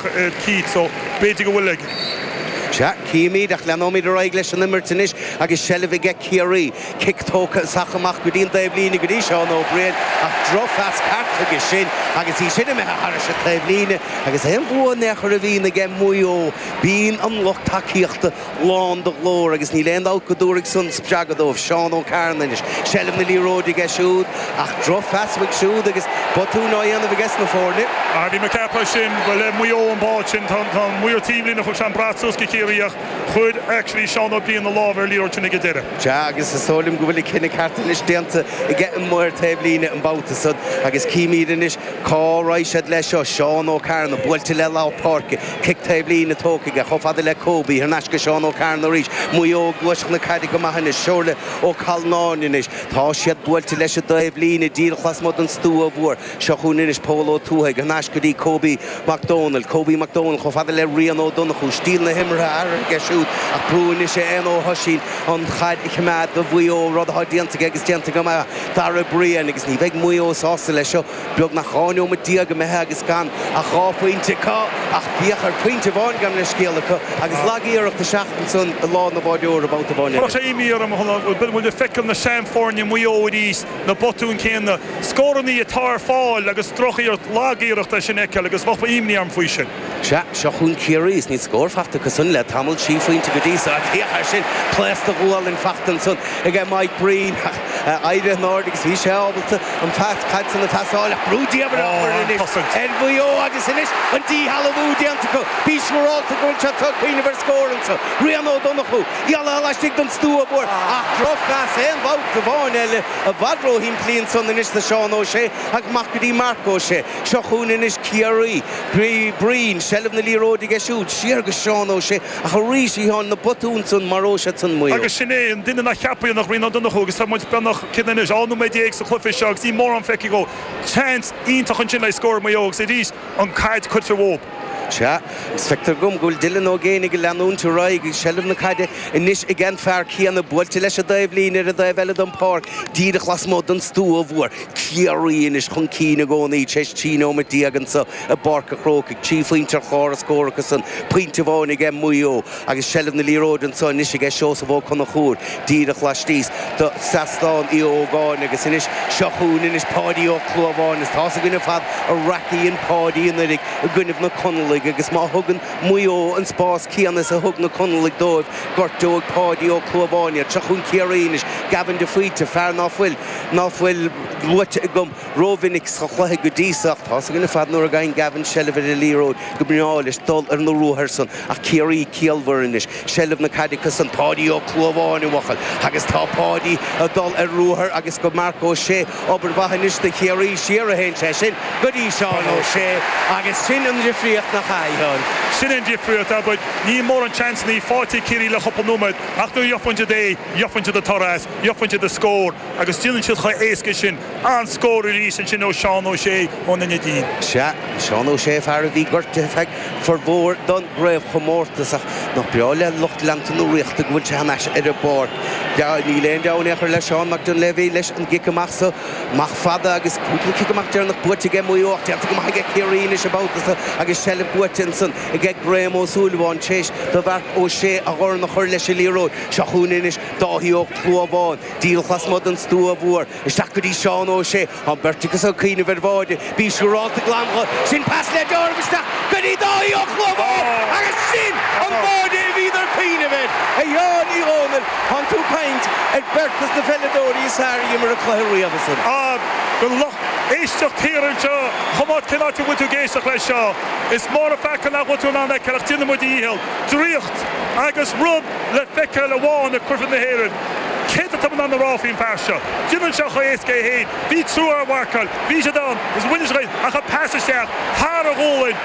air Keith so b'fhéidir go bhfuil ag. Sea, címid, ach leanóimid ar aghaidh leis an imirt anois agus seilbh aige Ciarraí. Cic tógtha is ach amach go dtí an taobhlíne go dtí Seán Ó Briain ach drochphas faighte aige sin agus í sin imithe thairis an taobhlíne agus aon bhua in aon chor a bhíonn aige Maigh Eo, bíonn an lucht tacaíochta. lán de ghlór agus níl aon dabht go dtabharfaidh san spreagadh dóibh. Seán Ó Cearnaigh anois. Seilbh na liathróide aige siúd ach drochphas uaidh siúd agus botúin á dhéanamh ages na foirne. Ah bhí mé ag ceapadh ansin gur le Maigh Eo an bád sin tá tá an maor taobhlíne thug sé an brat suas go Ciarraí ach chuir actually Seán Ó Briain a lámh ar liathróid sin ag an deireadh. Sea agus is dóigh liom go bhfuil an cinneadh ceart anois déanta aige an maor taobh líne an babhta san agus címíd anois cá raghaidh siad leis seo. Seán Ó Cearnaigh buailte le lár páirce. Cic taobhlíne tógtha aige, chomh fada le Cóbie, thar n-ais go Seán Ó Cearna arís, Maigh Eo, ag gluaiseacht na caide go maith anois, Somhairle Ó Calnáin anois, tá siad buailte leis an dtaobh líne, díreach lasmuigh den stua mhór, seo chugainn anois Pól Ó Tuathaigh, thar n-ais go dtí Cóbie Mac Dónaill, Cobie Mac Dónaill chomh fada le Rian Ó Donnchú, stíl na himeartha athraithe aige siúd, ach brú anois ar Éanna Ó hOisín an chaid a choimeád do Mhaigh Eo, rud atá déanta aige agus déanta go maith ag Dara Ó Briain agus ní bheidh Maigh Eo sásta leis seo. Beagnach dhá neomat déag imithe agus gan ach dhá phointe acu ach bhíodh ar phointe amháin gabh mo leithscéal acu agus lag iarracht isteach ansan i lámha an bháireora babhta amháin eile. Chuirfeadh sé imní orm a shúil go bhfuil muid ag feiceáil na seanfhoirne Mhaigh Eo arís, na botúin céanna, scórannaí atá ar fáil agus droch-iarracht, lag iarracht é sin a fheiceáil agus bheadh imní orm faoi sin. Sea, seo chugainn Ciarraí, is níl scór faighte acu san le tamall, trí phointe go dtí seo. Féach air sin, pléasc de ghualainn faighte ansan ag Mike Breen, ach éirigh in airde agus bhí sé ábalta an chaid san a phasáil ach brú diamhair á chur anois ar Mhaigh Eo agus anois an díshealbhú déanta acu. Bí siúrálta go bhfuil siad ag cuimhneamh ar scór ansan. Rian Ó Donnchú, geall leis laistigh den stua mhór ach drochphas aon bhabhta amháin eile, i bhfad róshimplí ansan anois do Sheán Ó Sé agus amach go dtí Marc Ó Sé. Seo chugainn anois Ciarraí, Brian, seilbh na liathróide aige siúd, siar go Seán Ó Sé, ach arís a Sheáin na botúin san, maróidh siad san Maigh Eo. Agus sin é an duine nach gceapfaí ná Rian Ó Donnchú agus tá muid beagnach, céard é anois, dhá nóiméad déag sa chluiche seo agus níl mórán feicthe go, seans iontach ansin le scór Maigh Eo agus arís an chaid tugtha dhób. Sea, agus feictear dhom go bhfuil Dylan Ó Géibheannaigh ag leanúint ar aghaidh agus seilbh na caide anois aige an fear céanna, buailte leis an dtaobh líne ar an dtaobh eile den pháirc, díreach lasmuigh den stua mhór. Ciarraí anois chun cinn i gcónaí, tar éis trí nóiméad déag anseo i bPáirc a' Chrócaigh. Trí phointe ar chlár na scór acusan, pointe amháin ag Maigh Eo agus seilbh na liathróide anseo anois aige Seosamh Ó Conchúir, díreach laistíos do Sheastán Uí Ógáin agus anois seo chugainn anois Páidí Ó Clúmháin agus tá's againn ar fad an raic a dhein Páidí anuraidh i gcoinnibh na Conallaigh agus má thugann Maigh Eo an spás céanna is a thug na Conallaigh dóibh, gortóidh Páidí Ó Clúmháin iad. Seo chugainn Ciarraí anois, Gavin de Faoite, fear ná fuil. ná fuil luaite agam rómhinic sa chluiche go dtí seo. Tá's againn ar fad nuair a gabhann Gavin seilbh ar an liathróid go mbreá leis dul ar na ruathair san ach Ciarraí ciallmhar anois, seilbh na caide acu san, Páidí Ó Clúmháin i bhfocail, agus tá Páidí ag dul ar ruathar agus go Marc Ó Sé. Obair mhaith anois do Chiarraí siar a théann sé sin go dtí Seán Ó Sé agus sin an difríocht nach ea, a Sheáin? Sin an difríocht, ach níl mórán seansanna faighte ag Ciarraí le cúpla nóiméad ach nuair a gheobhann siad é, gheobhann siad an toradh. buaicphointe de scór agus déanann siad chomh héasca sin an scór arís ansin ó Seán Ó Sé ón Neidín. Sea, Seán Ó Sé, fear a bhí gortaithe feadh furmhór don gcraobhchomórtas ach nach breá le lucht leanta na Ríochta go bhfuil sé thar n-ais ar an bpáirc. Níl aon deabhadh in aon chor le Seán Mac Duinnshléibhe leis an gcic amach so. Amach fada agus cúpla cic amach deireanach buaite aige Maigh Eo ach déanta go maith aige Ciarraí anois an babhta so agus seilbh buaite ansan aige Graham Ó Súilleabháin tréis do Mharc Ó Sé a dhorn a chur leis an liathróid. Seo chugainn anois Dáithí Ó Clúmháin, díreach lasmuigh den stua mhór, isteach go dtí Seán Ó Sé, an beirt acu ag cuimhneamh ar bháide, bí siúrálta glan dho sin, pas le deáramh isteach go dtí Dáithí Ó Clúmháin agus sin an báide a bhíodar ag cuimhneamh air. A Sheáin Uí Dhomhnaill, tánn tú ag caint ar beirt dos na peileadóirí is fearr a dh'imir an cluiche riamh. Ag an lucht éisteacht thiar anseo cuma cén áit a bhfuil tú ag éisteacht leis seo? Is mór an peaca nach bhfuil tú in ann é a fheiceáil ach déanfaidh muid ár ndícheall. Draíocht agus rud! le feiceáil amháin ag Coisir na hÉireann. Céard atá mé in ann a rá faoin bhfear seo? Déanann sé chomh héasca é féin. Bhí triúr á mharcáil. Bhí siad ann. Is mhuiníneach iad. Ach an pas isteach thar a ghualainn.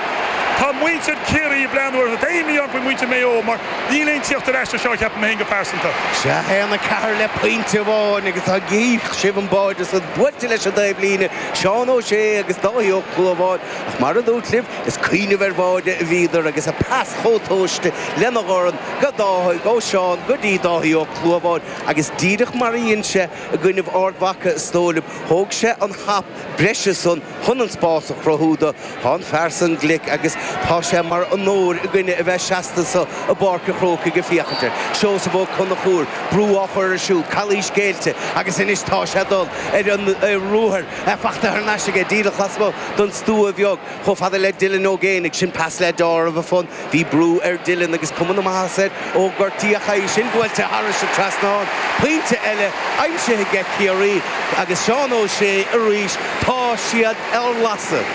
Tá muintir Chiarraí ag breathnú orthu. Tá imní orm faoi mhuintir Mhaigh Eo mar níl aon tíocht ar ais anseo ceapaim féin go pearsanta. Sea, 1, 4 le pointe amháin agus tá gaoth, sibh an báide san buailte leis an dtaobhlíne, Seán Ó Sé agus Dáithí Ó Clúmháin. Ach mar a dúrt libh, is ag cuimhneamh ar bháide a bhíodar agus an pas chomh tomhaiste lena dhorn, go Dáithí, ó Sheán go dtí Dáithí Ó Clúmháin, agus díreach mar a dhein sé i gcoinnibh Ard Mhaca is dóigh liom, thóg sé an hap breise san chun an spás a chruthú dó. Tá an fear san glic agus tá sé mar onóir againne a bheith seasta anso i bPáirc a' Chrócaigh ag féachaint air. Seosamh Ó Conchúir, brú á chur air siúd, calaois géillte agus anois tá sé dul ar an ruathar. É fachta thar n-ais aige, díreach lasmu' don stua bheag, chomh fada le Dylan Ó Géibheannaigh, sin pas le deáramh anonn. Bhí brú ar Dylan agus cuma na maitheasa air ó gortaíodh é, sin buailte tharais an trasnán. Pointe eile aimsithe aige Ciarraí agus Seán Ó Sé arís. Tá siad ar lasadh.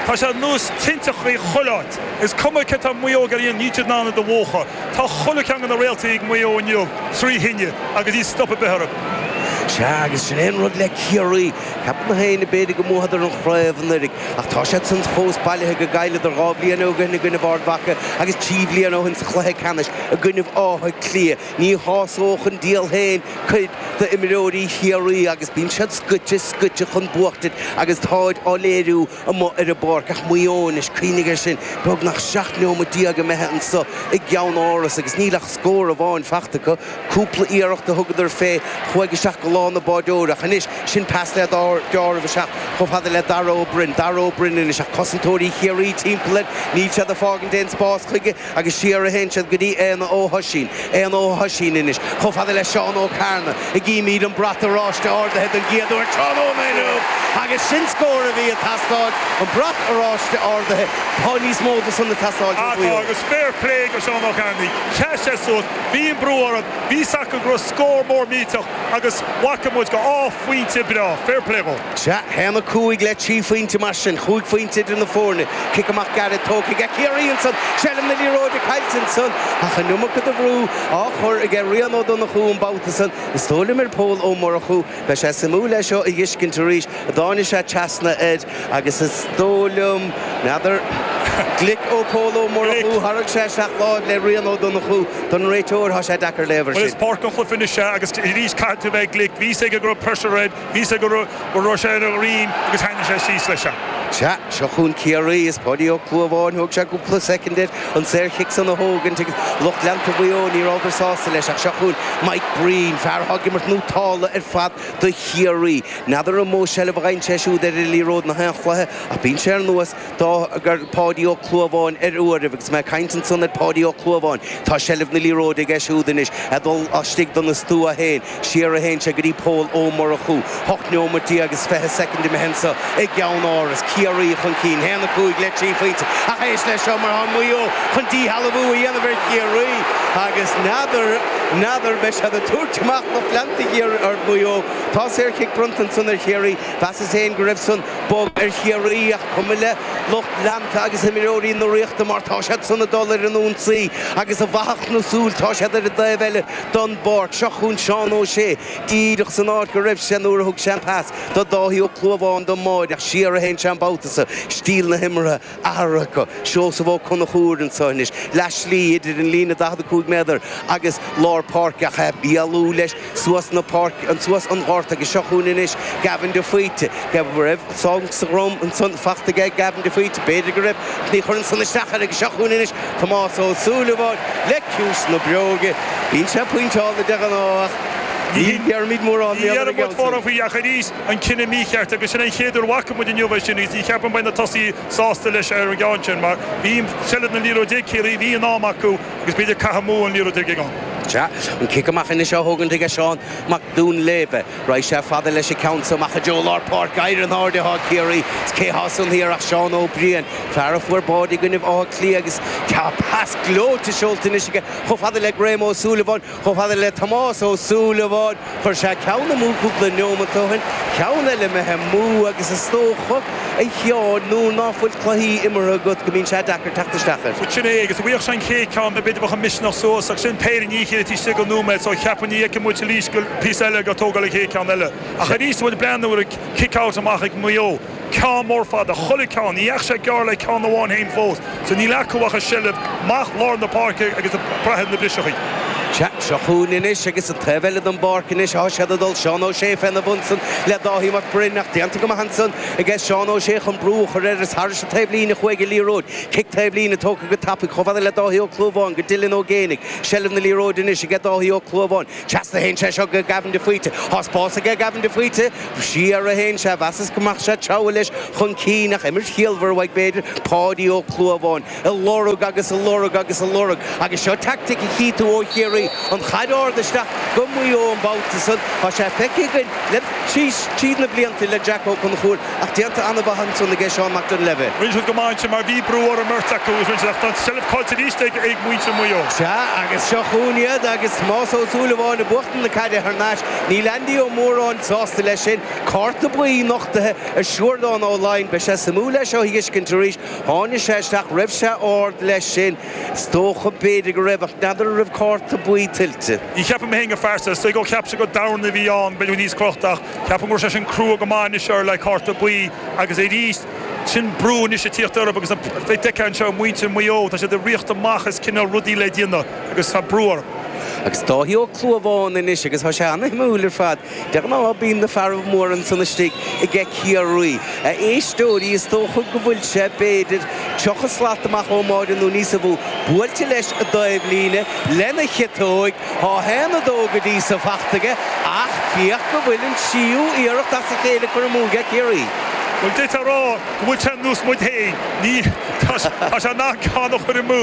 Tá sé ar nós tinteachaí chuile áit. Is cuma céard atá Maigh Eo a dhéanamh, níl siad in ann iad a mhúchadh. Tá chuile cheann de na réaltaí ag Maigh Eo inniu trí thine agus níl stop ar bith orthu. Sea, agus sin é an rud le Ciarraí. Ceapann gach éinne, b'fhéidir, go mbuadar an chraobh anuraidh, ach tá siad san fós bailithe go gcailleadar dhá bhliain ó shoin i gcoinnibh Ard Mhaca agus trí bhliain ó shoin sa chluiche ceannais i gcoinnibh Átha Cliath. Ní shásódh an diabhal féin cuid d'imreoirí Chiarraí agus bíonn siad scoite, scoite chun buachtaint agus táid á léiriú, amuigh ar an bpáirc ach Maigh Eo anois. Cuimhnigh air sin, beagnach 17 neomat imithe anseo i gCeannáras agus níl ach scór amháin faighte acu. Cúpla iarracht a thugadar fé chuaigh isteach go lámha an bháideora ach anois, sin pas le dealramh isteach chomh fada le Dara Ó Broin. Dara Ó Broin anois ach cosantóirí Chiarraí timpeall air, níl siad ag fágaint aon spás chuige. agus siar a théann siad go dtí Éanna Ó hOisín, Éanna Ó hOisín anois, chomh fada le Seán Ó Cearnaigh, an gcímíd an brat oráiste ardaithe don gcéad uair tráthnóna inniu! Agus sin scór a bhí ag teastáil, an brat oráiste ardaithe. Tá níos mó de san ag teastáil. Tá, agus fair plé go Seán Ó Cearnaigh, sheas sé suas, bhí an brú orainn, bhí 's acu go raibh scór mór millteach agus bhfaca muid go, dhá phointe breá, fair plé dhó. Sea, haon a 5 le 3 phointe, mar sin, chúig phointe idir na foirne. Cic amach gairid tógtha aige Ciarraí ansan, seilbh na liathróide caillte ansan ach an iomarca de bhrú á chur aige Rian Ó Donnchú an babhta san, is dóigh liom, ar Phól Ó Murchú. Beidh sé suimiúil é seo a dh'fhiscint arís, a dtáini' sé trasna air agus is dóigh liom, n'fheadar, glic ó Phól Ó Murchú, tharraing sé isteach láimh le Rian Ó Donnchú. Don réiteoir, thá sé deacair léamh air sin. Bhuel, is páirt den chluiche anois é agus arís, caithfidh tú a bheith glic. Bhí's aige go raibh pressure air. Bhí's aige go raibh sé ar a dhroim agus chuaigh sé síos leis. Sea, seo chun Ciarraí is Paudie Ó Clúmháin, thóg sé cúpla soicind air an saor chic san a thógaint agus lucht leanta Mhaigh Eo ní rabhadar sásta leis ach seo chun Mike Breen, fear a thug imirt nótálta ar fad do Chiarraí. N'fheadar an mó seilbh a dh'fhaigheann sé siúd ar an liathróid in aon chluiche ach bíonn sé ar nós. Tá, gur, Páidí Ó Clúmháin ar uairibh agus mé ag caint ansan ar Pháidí Ó Clúmháin, tá seilbh na liathróide aige siúd anois, a' dhul astigh don stua héin, siar a théann sé go dtí Pól Ó Murchú, hocht neomat déag agus fiche soicind imithe anso i gCeannáras, Ciarraí chun cinn, haon a cúig le trí phointe ach éist leis seo mar tá Maigh Eo chun díshealbhú a dhéanamh ar Chiarraí agus n'fheadar, n'fheadar, beidh siad a' tabhairt amach lucht leanta thiar ar Mhaigh Eo. Tá saor chic bronnta ansan ar Chiarraí, mheasas héin go raibh san. Bog ar Chiarraí ach is cuma le lucht leanta agus imreoirí na Ríochta mar tá siad san ag dul ar an ionsaí agus i bhfaiteadh na súl tá siad ar an dtaobh eile don bpáirc seo chun Seán Ó Sé díreach san áit go raibh sé nuair a thug sé an pas do Dáithí Ó Clúmháin don mbáide ach siar a théann sé an babhta so stíl na himeartha aithreacha, Seosamh Ó Conchúir anseo anois, leath slí idir an líne 45 méadar agus lár páirce ach é ag bailiú leis suas na páirce, suas an gort agus seo chugainn anois Gavin de Faoite, cé go raibh sonc sa drom ansan fachta aige Gavin de Faoite, b'fhéidir go raibh ach ní chuireann san isteach air agus seo chugainn anois Tomás Ó Súilleabháin le ciumhais na bróige, bíonn sé pointeála de ghnáth ach ní déarfaimid mórán, níl ar an gceann sin. an cinneadh mícheart agus sin é an chéad uair a bhfaca muid inniu é sin agus ní cheapaim beidh na tosaithe sásta leis ar an gceann sin mar bhí seilbh na liathróide ag Ciarraí, bhí in am acu agus b'fhéidir caite amú an liathróid ag an. Sea, an cic amach anois á thógaint aige Seán Mac Duinnshléibhe. Raghaidh sé fada leis an gceann so amach i dtreo lár páirce. Éirí in airde atá ag Ciarraí agus cé thá san aer ach Seán Ó Briain, fear a fuair báide i gcoinnibh Átha Cliath agus tá pas gleoite seolta anois aige chomh fada le Graham Ó Súilleabháin. Chomh fada le Tomás Ó Súilleabháin, chuir sé ceann amú cúpla neomat ó shin, ceann eile imithe amú agus is dócha, a Sheáin, nuair ná fuil cluichí imeartha agat go mbíonn sé deacair teacht isteach air. Sin é, agus dá bhfaigheadh sé an chéad cheann, b'fhéidir bheadh an misneach suas, ach sin péire i ndiaidh a chéile taobh istigh de nóiméad, so cheapfainn ní fheicfidh muid arís go, píosa eile, ag tógáil an chéad cheann eile. Ach arís, an bhfuil breathnú ar an kick out amach ag Maigh Eo? ceann mór fada, chuile cheann, ní dheachaigh sé gearr le ceann amháin fhéin fós, so níl acu ach seilbh amach lár na páirce agus breith ar na briseachaí. Sea, seo chugainn anois agus an taobh eile den bpáirc anois athá siad ag dul, Seán Ó Sé féna bhun san le Dáithí Mac Broin ach déanta go maith ansan aige Seán Ó Sé chun brú a chur air is thairis an taobh líne chuaigh an liathróid, cic taobh líne tógtha go tapaidh chomh fada le Dáithí Ó Clúmháin go Dylan Ó Géibheannaigh, seilbh na liathróide anois aige Dáithí Ó Clúmháin, Trasna a théann sé seo go Gavin de Faoite. Thá spás aige Gavin de Faoite. Siar a théann sé. Mheasas go mbeadh sé ag treabhadh leis chun cinn ach imirt chiallmhar uaidh b'fhéidir Páidí Ó Clúmháin. Á lorg agus á lorg agus á lorg. Agus seo taictic a chíonn tú ó Chiarraí an chaid ard isteach go Maigh Eo an babhta san. Tá sé feicthe againn le tríd na blianta le Jack Ó Conchúir Ach déanta ana-mhaith ansan aige Seán Mac Duinnshléibhe. Rinne siad go maith ansin mar bhí brú ar an mbeirt acu agus rinne siad ach tá an tseilbh caillte arís ag muintir Mhaigh Eo. Sea agus seo chugainn iad agus Tomás Ó Súilleabháin ag buachtaint na caide thar n-ais níl Andy Ó Móráin sásta leis sin. Cárta buí nochtaithe ar Shiúrdán Ó Floinn. Beidh sé suimiúil é seo a fheiscint arís. Tháinig sé isteach, an raibh sé ard leis sin. Is dócha b'fhéidir go raibh ach n'fheadar an raibh cárta buí tuillte. Ní cheapaim féin gur phearsa istigh ó cheap sé gur domhain a bhí ann, b'fhéidir go bhfuil níos crochta ach. Ceapaim go raibh sé sin crua go maith anois air le cárta buí agus arís sin brú anois ag tíocht orthu agus bheith feicthe anseo muintir Mhaigh Eo tá siad ag riocht amach as cineál rudaí le déanamh agus tá brú orthu. Agus Dáithí Ó Clúmháin anois agus tá sé an-suimiúil ar fad. De ghnáth bíonn na fearaibh mór ansan istigh aige Ciarraí. A éisteoirí, is dócha go bhfuil sé, b'fhéidir, tríocha slat amach ón mbáide nó níosa mhó, buailte leis an dtaobh líne lena chiotóig! Tá haon a dó go dtí so fachta aige ach féach go bhfuil an tríú iarracht as a chéile curtha amú aige Ciarraí. Bhfuil tú ag rá go bhfuil sé nós muid fhéin. Ní, tá sé in ann ceann a chur amú.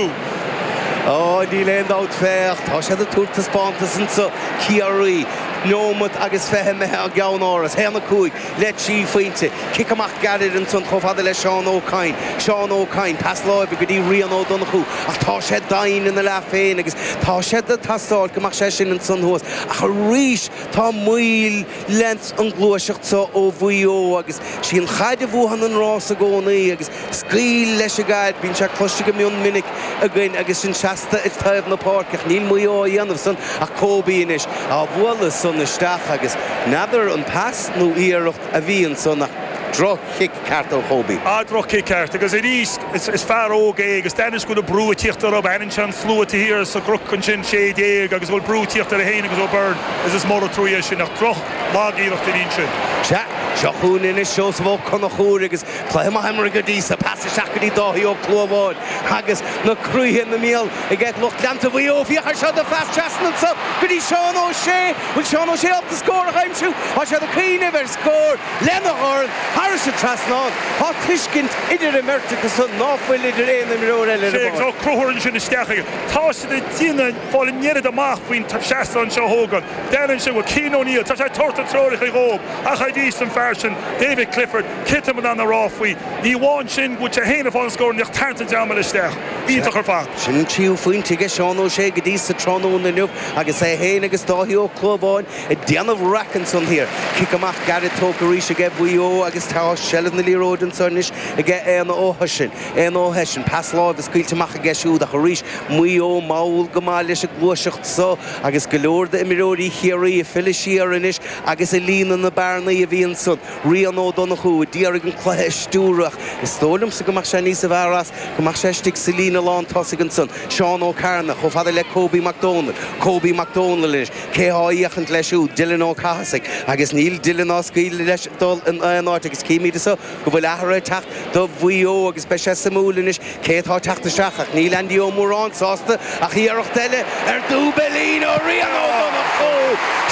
Ó, níl aon dabht, féach, tá siad ag tabhairt taispeántas anseo, Ciarraí, neomat agus fiche imithe i gCeannáras, haon a cúig. le trí phointe. Cic amach gairid ansan chomh fada le Seán Ó Cadhain. Seán Ó Cadhain, pas láimhe go dtí Rian Ó Donnchú ach tá sé doimhin ina leath féin agus tá sé ag teastáil go mbeadh sé sin ansan thuas ach arís tá moill leis an gluaiseacht seo ó Mhuigh Eo agus sí an chaid a bhuann an rás i gcónaí agus Scaoil leis an gcaid. Bíonn san cloiste go mion minic againn agus sinn seasta ag taobh na páirce, ach níl Maigh Eo á dhéanamh san ach Kobe anois, á bhualadh san isteach agus n'fheadar an pas nó iarracht a bhí ansan ach droch-chic ceart ó Kobe. Á, droch-chic ceart agus arís is fear óg é agus d'aithin sé go bhfuil an brú ag tíocht orthub, aithníonn sé an slua atá thiar sa gCnoc ansin, sé déag, agus go bhfuil brú ag tíocht ar é féin agus Ó Beirn agus is mór an truaí é sin ach droch, lag iarracht a bhí ansin. Sea, seo chugainn anois Seosamh Ó Conchúir agus Cluiche maith imeartha go dtí so, pas isteach go dtí Dáithí Ó Clúmháin agus na croíthe ina mbéal aige lucht leanta Mhaigh Eo. Féach ar seo de phas trasna anseo go dtí Seán Ó Sé. Bhfuil Seán Ó Sé ábalta scór a aimsiú? Tá sé ag cuimhneamh ar scór lena dhorn thairis an trasnán. Tá tuiscint idir an mbeirt acu san ná fuil idir aon imreoir eile ar an bpáirc. Sea, Ó Conchúir ansin isteach aige. Tá siad in ann fáil an oiread amach faoin seastán seo Uí Ógáin. Déanann sé go bhfuil Cian O'Neill, tá sé ag tabhairt na treoracha dhóib ach arís an fear sin David Clifford, Titeann mná na Rá faoi. Ní amháin sin, bhuail sé féin a bhonn scór inniu tarraingt an dream eile isteach iontach ar fad. Sin an tríú phointe aige Seán Ó Sé go dtí so tráthnóna inniu agus é féin agus Dáithí Ó Clúmháin ag déanamh raic ansan thiar. Cic amach gairid tógtha arís aige Mhaigh Eo agus tá seilbh na liathróide anseo anois aige Éanna Ó hEisean. Éanna Ó hEisean, pas láimhe scaoilte amach aige siúd ach arís Maigh Eo mall go maith leis an gluaiseacht so agus go leor d'imreoirí Chiarraí ag filleadh siar anois agus ag líonadh na bearnaí a bhí ansan. Rian Ó Donnchú a d'iarraidh an cluiche a stiúradh. Is dóigh liomsa go mbeadh sé níos fearr as go mbeadh sé istigh sa líne lán tosaigh ansan. Seán Ó Cearnaigh, chomh fada le Kobe Mac Dónaill. Kobe Mac Dónaill anois, cé thá á fhéachaint leis siúd? Dylan Ó Cathasaigh. Agus níl Dylan ag scaoileadh leis dul in aon áit agus chímíd anso go bhfuil athrú ag teacht do Mhuigh Eo agus beidh sé suimiúil anois Cé atá ag teacht isteach ach níl Andy Ó Móráin sásta ach iarracht eile ar dhúbailín ó Rian Ó Donnchú!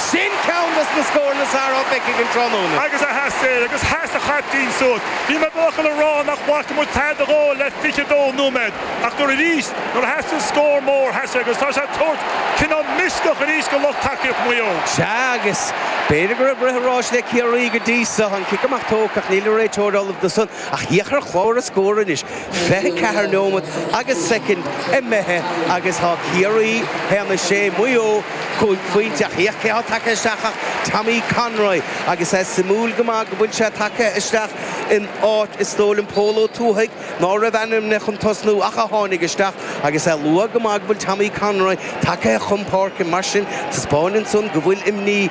Sin ceann dos na scóranna is fearr a bheidh againn tráthnóna. Agus theastaigh agus sheas an caiptín suas. Bhí mé díreach chun a rá nach bhfaca muid tada dhó le fiche dó nóiméad ach nuair arís nuair a theastaigh an scór mór sheas sé agus tá sé ag tabhairt cineál misneach arís do lucht tacaíocht Mhaigh Eo. Sea agus b'fhéidir go raibh rith a ráis le Ciarraí go dtí so. An cic amach tógtha ach níl an réiteoir ullamh do san. Ach féach ar chlár na scór anois, 24 neomat agus soicind imithe agus tá Ciarraí 1 6, Maigh Eo cúig phointe ach féach cé atá tagtha isteach ach Tommy Conroy agus é suimiúil go maith go bhfuil sé tagtha isteach in áit is dóigh liom Pól Ó Tuathaigh ná raibh ainmnithe chun tosnú ach a tháinig isteach agus é luath go maith go bhfuil Tommy Conroy tagtha chun páirce mar sin taispeáineann san go bhfuil imní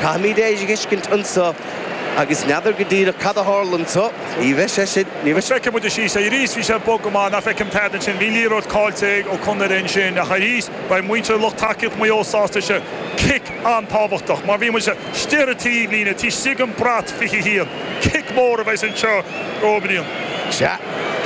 Caithfimid é a fheiscint anseo agus n'fheadar go díreach cad a tharla anseo, ní bheidh sé sin, ní bheidh. Feicfidh muid, ar sise. Arís bhí sé bog go maith, nach bhfeicim tada ansin. Bhí liathróid caillte ag Ó Conaire ansin ach arís beidh muintir lucht tacaíocht Mhaigh Eo sásta sise. Cic an-tábhachtach mar bhí muid istigh ar an taobhlíne, taobh istigh den bhrat 21. Cic mór a bheidhs anseo ó Brian. Sea,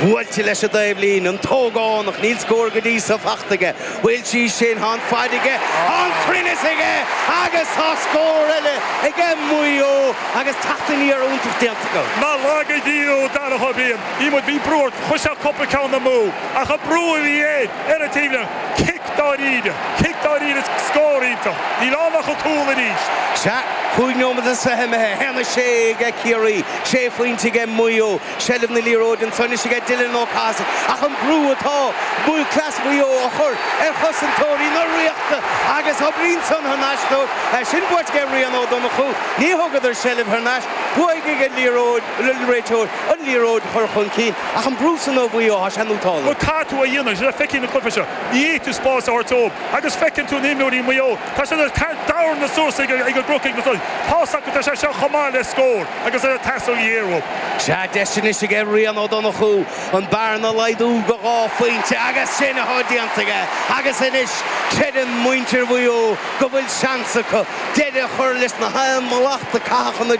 buailte leis an dtaobh líne, an t-ógánach, níl scór go dtí seo fachta aige. Bhuail sí sin, thá an faid aige, thá an cruinneas aige agus thá scór eile aige Maigh Eo agus teacht aniar iontach déanta acu. Nár laga Dia thú Darach Ó Beirn, í muid bhí brú air chuir sé cúpla ceann amú ach an brú a bhí air ar an taobhlíne, cic dáiríre, cic dáiríre is scór iontach. Níl ann ach an cúl arís. Sea, cúig nóiméad is fiche imithe, haon a sé aige Ciarraí, sé phointe aige Maigh Eo, seilbh na liathróide ansan anois aige Dylan Ó Cathasaigh ach an brú atá buachaillí Mhaigh Eo a chur ar chosantóirí na Ríochta agus oibríonn san thar n-ais dóibh. É sin buaite aige Rian Ó Donnchú, ní thugadar seilbh thar n-ais, buaigh ag an liathróid, an réiteoir, an liathróid a chur chun cinn ach an brú san ó Mhaigh Eo, tá sé nótálta. Bhuel caithfidh tú a dhéanamh, sin a feicfidh na cluife seo, ní fhéadfadh tú spás a thabhairt dóibh agus feiceann tú na imreoirí Mhaigh Eo, Tá siad ar thar d'amhran na Suasaigh ag an gcruc ag na Suasaigh. Tá a fhios acu, tá sé seo chomh maith le scór agus ar an t-easair dhé-uair. Sea, deis anois aige Rian Ó Donnchú an bearna a laghdú go dhá phointe agus sin atá déanta aige agus anois creideann muintir Mhaigh Eo go bhfuil seans acu deireadh a chur leis na haon mhallacht a caitheadh chun na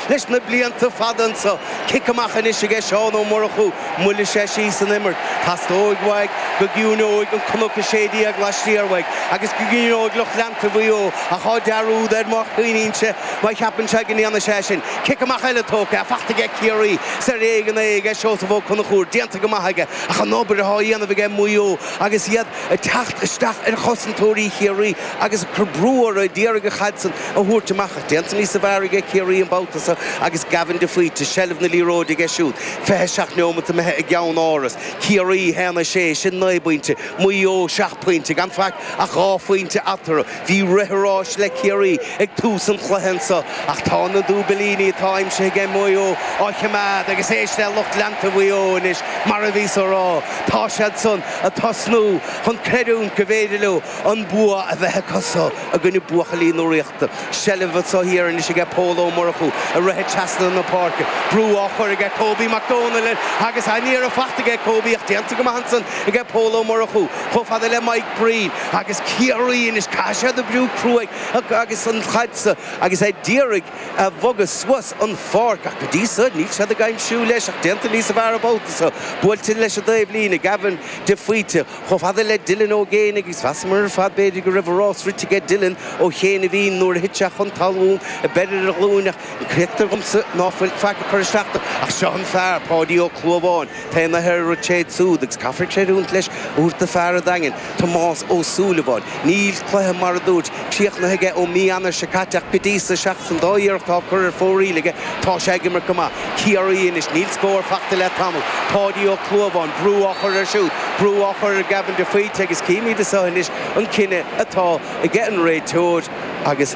Leis na blianta fada anseo, cic amach anois aige Seán Ó Murchú moilleoidh sé síos an imirt. Tastóidh uaidh go gciúineoidh an cnoc a sé déag laistiar uaidh agus go gciúineoidh lucht leanta Mhaigh Eo ach tá dearúd air má choinníonn sé, má cheapann sé go ndéanfaidh sé sin. Cic amach eile tógtha, fachta aige Ciarraí. Is ar éigean é aige Seosamh Ó Conchúir, déanta go maith aige ach an obair atá á dhéanamh aige Maigh Eo agus iad ag teacht isteach ar chosantóirí Chiarraí agus ag cur brú orthu d'iarraidh an chaid san a thabhairt amach ach déanta níos fearr aige Ciarraí an babhta seo agus Gavin de Faoite, seilbh na liathróide aige siúd, 27 neomat imithe i gCeannáras. Ciarraí 1, 6, sin naoi bpointe, Maigh Eo seacht pointe, gan faic ach dhá phointe eatarthu. Bhí rith an ráis le Ciarraí ag tús an chluiche anseo ach tá na dúbilíní atá aimsithe aige Maigh Eo á choimeád agus éist le lucht leanta Mhaigh Eo anois mar a bhíos á rá, tá siad san ag tosnú chun creidiúint go bhféidir leo an bua a bheith acusa i gcoinne buachaillí na Ríochta. Seilbh anseo thiar anois aige Pól Ó Murchú ag rith trasna na páirce. Brú á chur aige Kobe McDonald air agus an-iarracht aige Kobe ach déanta go maith ansan aige Pól Ó Murchú. chomh fada le Mike Breen agus Ciarraí anois, caithfidh siad oibriú cruaidh agus an chaid sa agus é d'iarraidh a bhogadh suas an pháirc ach go dtí so níl siad ag aimsiú leis ach déanta níosa bhfearr an babhta so. Buailte leis an dtaobhlíne, Gavin de Faoite chomh fada le Dylan Ó Géibheannaigh agus mheasamar ar fad b'fhéidir go raibh a rás rite aige Dylan Ó Géibheannaigh nuair a thit sé chun talún, ag breith ar a ghlúin ach. Cítear dhomsa ná fuil faic ag cur isteach air ach seo an fear, Páidí Ó Clúmháin, tá an liathróid aige siúd agus caithfidh sé leanúint leis a thabhairt do fear an Daingin, Tomás Ó Súilleabháin. Níl cluiche, mar a dúirt, críochnaithe aige ó mí Eanáir seo caite ach go dtí seo, seachas an dá iarracht atá curtha ar fóraoil aige, tá sé ag imirt go maith. Ciarraí anois, níl scór fachta le tamall. Páidí Ó Clúmháin, brú á chur air siúd, brú á chur ar Gavin de Faoite agus címid anois an cinneadh atá aige an réiteoir. Agus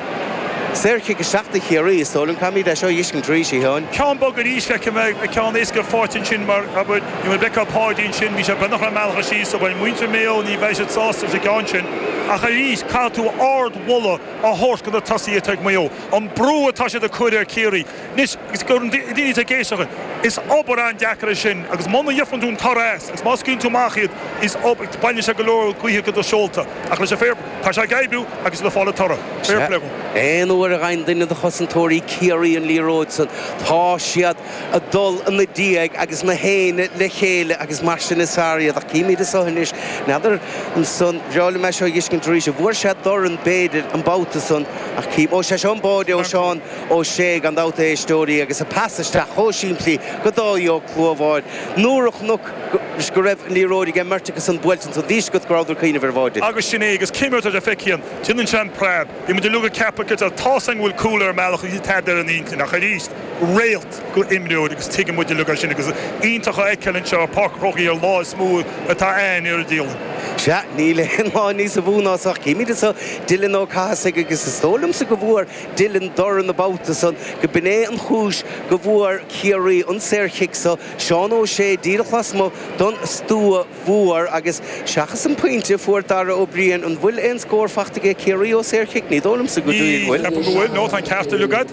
saorchic isteach do Chiarraí, is dóigh liom. Caithfimid é seo a dh'fheiscint arís, a Sheáin. Ceann bog arís feiceadh mé ceann éasca faighte ansin mar, abair, má fheiceann tú Páidí ansin, bhí sé beagnach ar an mbealach síos so bhuel, muintir Maigh Eo ní bheidh siad sásta leis an gceann sin ach arís caithfidh tú ard-mholadh a thabhairt go na tosaithe atá ag Maigh Eo. An brú atá siad ag cur ar Chiarraí. Anois agus do na daoine atá ag éisteacht linn, is obair an-deacair é sin agus muna bhfaigheann tú an toradh as agus má scaoileann tú amach iad, is baineann sé go leor gaoithe go do sheolta. Ach leis an fair, tá sé ag oibriú agus le fáil an toradh. Fair play dhó. Aon uair a gheibheann duine de chosantóirí Ciarraí an liathróid san, tá siad ag dul ina diaidh agus gach éinne le chéile agus mar sin is fearr iad. Ach címid as seo anois. N'fheadar ansan, ba bhreá liom é seo a dh'fheiscint arís. An bhfuair sé dorn b'fhéidir an babhta san ach cím. Ó sé seo an báide ó Seán. Ó Sé, gan dabht, a éisteoirí agus a pas isteach chomh simplí go Dáithí Ó Clúmháin nuair a chonaicís go raibh an liathróid aige mbeirt acusan buailte ansan bhí a fhios agat go rabhadar ag cuimhneamh ar bháide. Agus sin é, agus cén imirt, abair, feiceann tú ansin an preab, bhí muid uilig ag ceapadh, abair, tá seans go bhfuil cúl ar an mbealach agus níl tada ar a n-intinn ach aríst réalt go imreoir agus tuigeann muid uilig é sin agus iontach a fheiceáil anseo i Páirc an Chrócaigh ar lá is mó atá ann ar an dialann. Sea, níl aon lá níosa mhó ná san ach, címid anso Dylan Ó Cathasaigh agus is dóigh liomsa go bhfuair Dylan dorn an babhta san go b'in é an chúis go bhfuair Ciarraí an saorchic so, Seán Ó Sé díreach lasmuigh don stua mhór agus seachas an pointe a fuair Dara Ó Briain an bhfuil aon scór faighte aige Ciarraí ó saorchic? Ní dóigh liomsa go bhfuil. Ní cheapaim go bhfuil. No, tá an ceart uilig agat.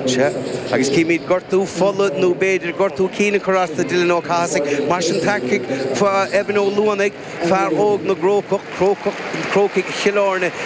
Sea. Agus címid gortú fola nó b'fhéidir gortú cinn ag cur as do Dylan Ó Cathasaigh. Mar sin tiocfaidh Evan Ó Luanaigh, fear óg na gCrócach, Crócaigh Chill Airne.